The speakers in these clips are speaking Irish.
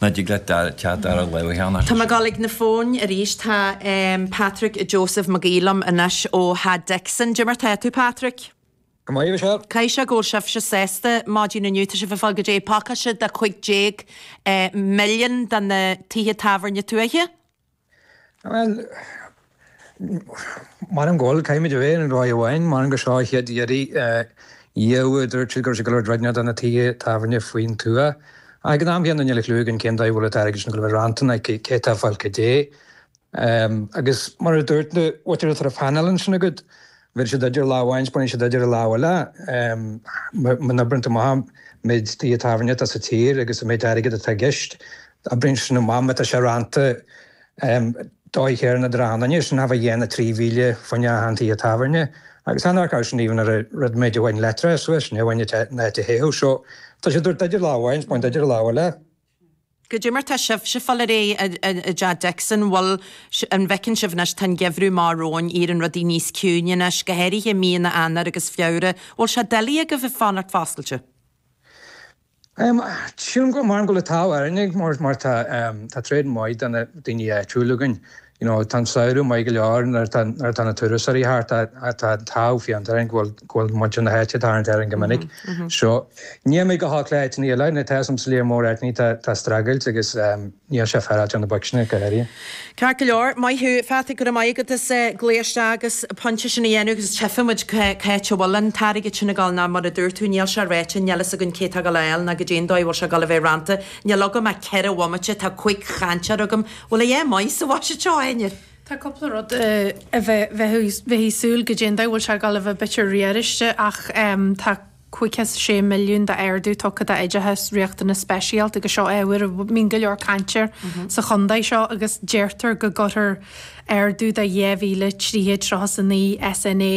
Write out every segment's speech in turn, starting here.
Ná dtig leat teacht ar an laoch cheana. Tá mé ag dul ag na fóin arís. Tá Patrick Joseph Mag Aoidh liom anois ó Theach Dixon. Dé mar tá tú Patrick. Go maire seo. Caithfidh sé go bhfuil sibhse sásta maidin inniu. Tá sibh ag fáil goidé pacáiste de 15 milliún do na tithe tábhairne tuaithe. Bhuel, m'anam go bhfuil, caithfimid a bheith ar an dóigh amháin, m'anam gur seo an chéad iarraidh daofa a dúirt siad go raibh siad ag gabháil a thabhairt rud éigin do na tithe tábhairne faoin tuath. Ach ag an am chéanna níl clú againn cén dóigh a bhfuil an t-airgead sin ag gabháil a bheith rannta nó, cé atá ag fáil caidé. Agus mar a dúirt, bhuaitear an sort of painéal ansin agat bheir siad duit ar lámh amháin agus baineann siad díot ar an lámh eile. Má oibríonn tú amach an méid tithe tábhairne atá sa tír agus an méid airgid atá i gceist, oibríonn sin amach má tá sé rannta dóigh shaor na dtráthanna. Níl sin ach ag déanamh 3,000 fá choinne achan teach tábhairne agus an fhágáil sin even ar a rud mí amháin leictreachais leis, ní amháin na áit a théadh. So, tá siad ag tabhairt duit ar lámh amháin agus ag baint díot ar an lámh eile. Goidé mar tá sibhse ag fáil ar aghaidh i dTeach Dixon. Bhuel, an bhfeiceann sibh anois, tá an geimhreadh amach romhainn, éiríonn rudaí níos ciúine anois, go háirithe míonna Eanáir agus Feabhra. An bhfuil sé doiligh agaibh ag fanacht foscailte? Sílim go maith go bhfuil an t-ádh orainne mar tá tréad maith de na daoine áitiúla againn. you know tá an samhradh maith go leor nuair atá nuair atá na turasóirí thart atá an t-ádh fiánta orainn go bhfuil go bhfuil muintir na háite tarraingt orainn go minic so níl muid chomh holc le áiteanna eile nuair atá some sa líon mór áiteanna atá ag streachailt agus níl sé féaráilte ar na boic sin go háirithe. Ceart go leor, maith thú Pheatsaí go raibh maith agat as glao isteach agus pointe sin a dhéanamh agus tchifidh muid cá háit a bhfuil an t-airgead sin a dhul ná mar a dúirt tú níl sé ráite níl fhios againn cé tá a dhul a fháil ná goidé an dóigh a bhfuil sé a dhul a bheith rannta níl agam ach ceithre bhomaite tá cúig chainteoir agam Bhfuil a dhath maith sa bhuiséad seo ainnir? Tá cúpla rud a bheifí ag súil goidé an dóigh a bhfuil sé ag dul a bheith b'fhéidir riaráiste ach tá cúig chéad is sé milliún d'ardú tugtha d'oideachas riachtanas speisialta agus seo ábhar a mbíonn go leor caint air sa chontae seo agus deirtear go gcuirfear ardú de dhá mhíle trí chéad tríocha is a naoi SNA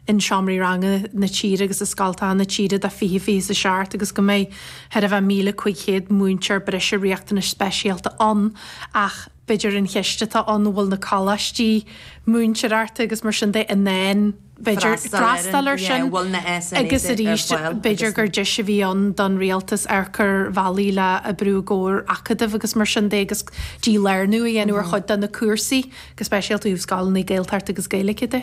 in seomraí ranga na tíre agus i scoltacha na tíre do fiche fiche a seacht agus go mbeidh chóir a bheith 1,500 múinteoir breise riachtanais speisialta ann ach b'fhéidir an cheist atá ann an bhfuil na coláistí múinteoireachta agus mar sin de in ann b'fhéidir freastal ar sin agus arís b'fhéidir gur deis a bhí ann don rialtas amharc ar bhealaí le oibriú i gcomhar acadamh agus mar sin de agus dílárnú a dhéanamh ar chuid de na cúrsaí go speisialta ó thaobh scoileanna Gaeltachta agus Gaeilge de.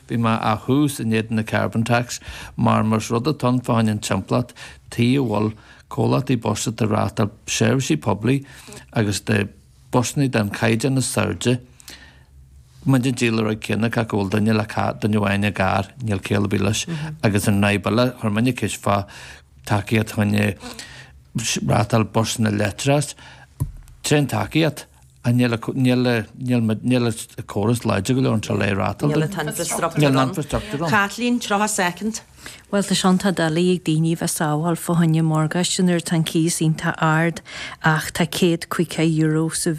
Bhí mé ó thús in éadan na Carbon Tax mar, más rud atá ann, fá choinne an timpeallacht tuige a bhfuil comhlachtaí bus atá ag reáchtáil seirbhísí poiblí agus do bhusanna den chaighdeán is airde, go mbíonn an díol ráta céanna acu, go bhfuil duine le carr, duine amháin i gcarr, níl ciall ar bith leis, agus an fhadhb eile a chuir mé an cheist fá tacaíocht choinne reáchtáil busanna leictreach, tréan tacaíocht. a. Níl a. Níl a. Níl, níl an córas láidir go leor anseo le é a reáchtáil. Níl an t-infreastruchtúr ann. Kathleen, 30 soicind. Bhuel, tá sé iontach doiligh ag daoine a bheith sábháil fá choinne morgáiste nuair atá an cíos iontach ard ach tá céad caoga euro sa,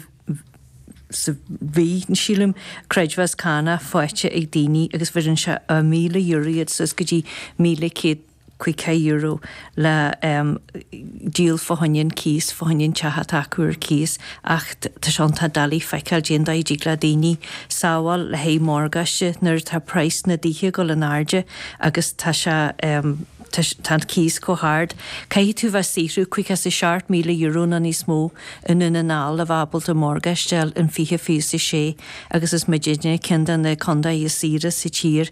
sa mhí, sílim, creidmheas cánach faighte ag daoine agus bheireann sé ó míle euro iad suas go dtí míle céad, caoga euro le díol fá choinne cíos, fá choinne teach atá acu ar cíos ach tá sé iontach doiligh feiceáil cad é an dóigh a dtig le daoine sábháil le haghaidh morgáiste nuair atá praghas na dtithe ag dul in airde agus tá sé tá sé tá an cíos chomh hard caithfidh tú bheith saothrú caoga is a seacht míle euro nó níos mó i nDún na nGall le bheith ábalta morgáiste a fháil in fiche fiche a sé agus is muidinne ceann de na contae is saoire sa tír